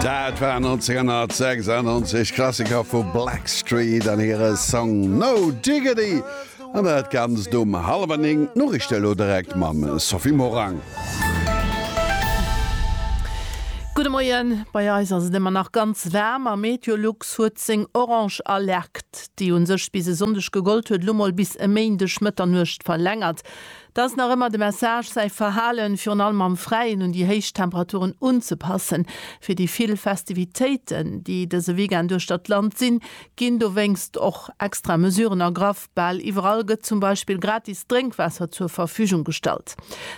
Dat war 1996 Klassiker vu Blackstreet an hire Song No Diggity an dat Ganzt um hallwer 9. D'Noriichte elo direkt mam Sophie Morang. Gudde Moien, bei eis ass et ëmmer nach ganz waarm a Meteolux huet seng orange Alerte, déi u sech bis e Sonndeg gegollt huet, elo mol bis e Méindeg Mëtternuecht verlängert. Da ass nach ëmmer de Message, säi Verhalen, virun allem am Fräien, un déi héich Temperaturen unzepassen. Fir déi vill Festivitéiten, déi dëse Weekend uechter d'Land sinn, ginn dowéinst och extra Mesuren ergraff. Bal iwwerall gëtt zum Beispill gratis Drénkwaasser zur Verfügung gestallt.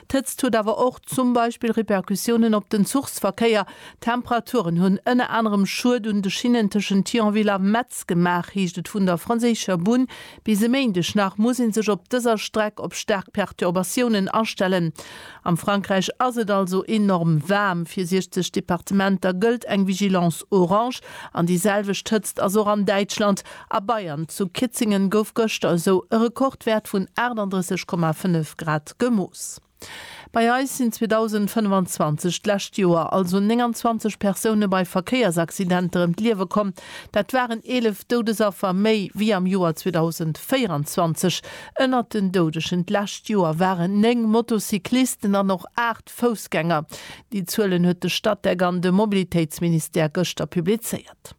D'Hëtzt huet awer och zum Beispill Repercussiounen op den Zuchsverkéier. D'Temperaturen hunn ënner anerem Schued un de Schinnen tëschent Thionville a Metz gemaach, heescht et vun der franséischer Bunn. Bis e Méindeg nach muss ee sech op dëser Streck op staark Perturbatiounen astellen. Am Frankräich ass et also enorm waarm. Fir 60 Departementer gëllt eng Vigilance orange an déi selwecht Hëtzt ass och an Däitschland a Bayern. Zu Kitzingen gouf gëschter esou e Rekordwäert vun 38,5 Grad gemooss. Bei eis sinn 2025, d'lescht Joer, also 29 Persoune bei Verkéiersaccidenter ëm d'Liewe komm. Dat waren 11 Doudesaffer méi wéi am Joer 2024. Ënnert den Doudegen d'lescht Joer waren 9 Motocyclisten an och 8 Foussgänger. Déi Zuelen huet de Statec an de Mobilitéitsministère gëschter publizéiert.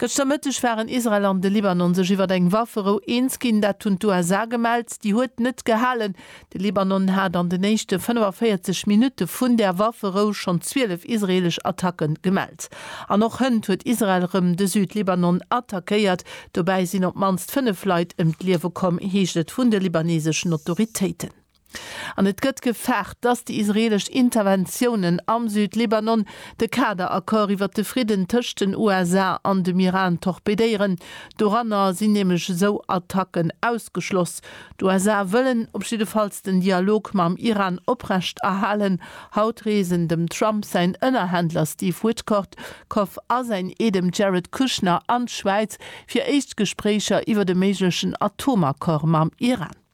Gëschter Mëtteg waren Israel an de Libanon sech iwwer eng Wafferou eens ginn. Dat hunn d'USA gemellt. Déi huet net gehalen. De Libanon hat an den éischte 45 Minutte vun där Wafferou schonn 12 israeelesch Attacke gemellt. An och hënt huet Israel rëm de Süd-Libanon attackéiert. Dobäi sinn op d'mannst 5 Leit ëm d'Liewe komm, heescht et vun de libaneseschen Autoritéiten. An et gëtt gefaart, dass déi israeelesch Interventiounen am Südlibanon de Kader-Accord iwwer de Fridden tëscht den USA an dem Iran torpedéieren. Doranner sinn nämlech esou Attacken ausgeschloss. D'USA wëllen op jiddefalls den Dialog mam Iran oprecht erhalen. Haut reesen dem Trump säin Ënnerhändler Steve Witkoff a säin Ee dem Jared Kushner an d'Schwäiz fir éischt Gespréicher iwwert e méiglechen Atomaccord mam Iran.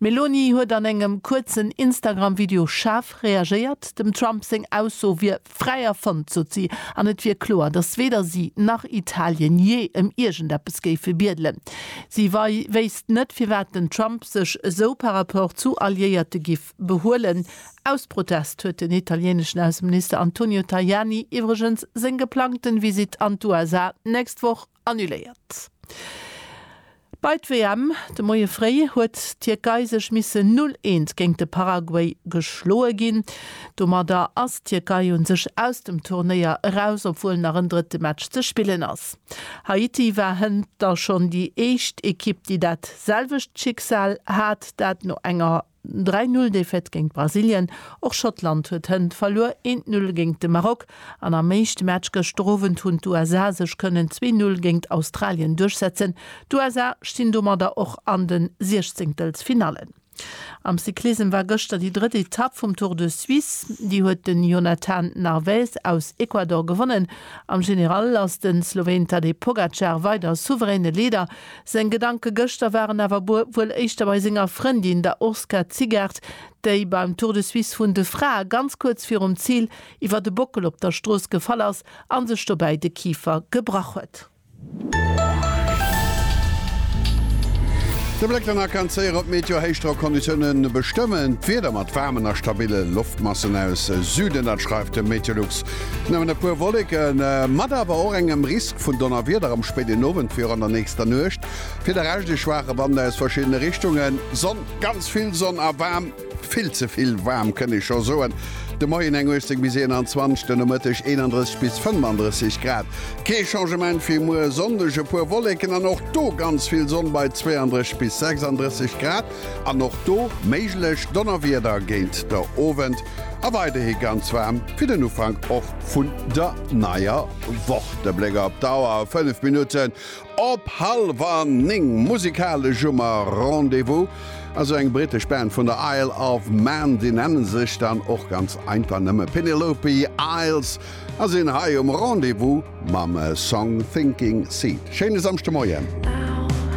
D'Meloni huet an engem kuerzen Instagram-Video schaarf reagéiert. Dem Trump seng Ausso wier fräi erfonnt, sot si, an et wier kloer, datt weder si nach Italien jee ëm iergendeppes géife biedelen. Si wéisst net, firwat den Trump sech esou par rapport zu Alliéierte giff behuelen. Aus Protest huet den italieneschen Ausseminister Antonio Tajani iwwregens seng geplangten Visitt an d'USA d'nächst Woch Annuléiert. Bei d'WM de Moie fréi huet d'Tierkei sech missen Null eent géint de Paraguay geschloe ginn. Domadder ass d'Tierkei un sech aus dem Turnéier eraus, obwuel nach en drëtte Match ze spillen ass. Haiti war hënter schonn déi éischt Ekipp, déi dat selwecht Schicksal hat, dat no enger. 3 Null Défaite géint Brasilien, och Schottland huet hënt verluer, eent Null géint de Maroc an am éischte Match gëschter Owend hunn d'USA sech kënnen zwee Null géint Australien duerchsetzen. D'USA stinn domadder och an de Siechzéngtelsfinallen. Am Cyclissem war gëschter déi drëtt Etapp vum Tour de Suisse, déi huet de Jonathan Narvaez aus Ecuador gewonnen. Am General ass de Sloween Tadej Pogacar weider souveräne Leader. Seng Gedanke gëschter waren awer wuel éischter bei senger Frëndin, der Urska Zigaert, déi beim Tour de Suisse vun de Frae ganz kuerz virum Zil iwwert e Bockel op der Strooss gefall ass a sech dobäi de Kifer gebrach huet. De Bléck dann a kann zéier op d'Meteo-Héichdrockconditiounen bestëmmen. D'Wieder mat waarmen a stabille Loftmassen aus Süden, dat schreift de Meteolux. Nëmmen e puer Wolleke mat awer och engem Risk vun Donnerwieder am spéiden Owend wéi och an der nächster Nuecht. Fir de Rescht e schwaache Wand aus verschiddene Richtungen. Sonn, ganz vill Sonn a waarm, vill ze vill waarm kënnt ee scho soen. De Moien eng 18 bis 21, de Nomëtteg 31 bis 35 Grad. Kee Changement fir muer Sonndeg, e puer Wolleken an och do ganz vill Sonn bei 32 bis 36 Grad. An och do méiglech Donnerwieder géint der Owend a weiderhi ganz waarm fir den Ufank och vun der neier Woch. De Bléck op d'Auer, 5 Minutten op hallwer 9. Musikalesch hu mer Rendez-vous a sou eng brittesch Band vun der Isle of Man. Déi nenne sech dann och ganz einfach nëmme Penelope Isles a sinn hei um Rendez-vous mam Song Thinking Seed. Schéine Samschdemoien.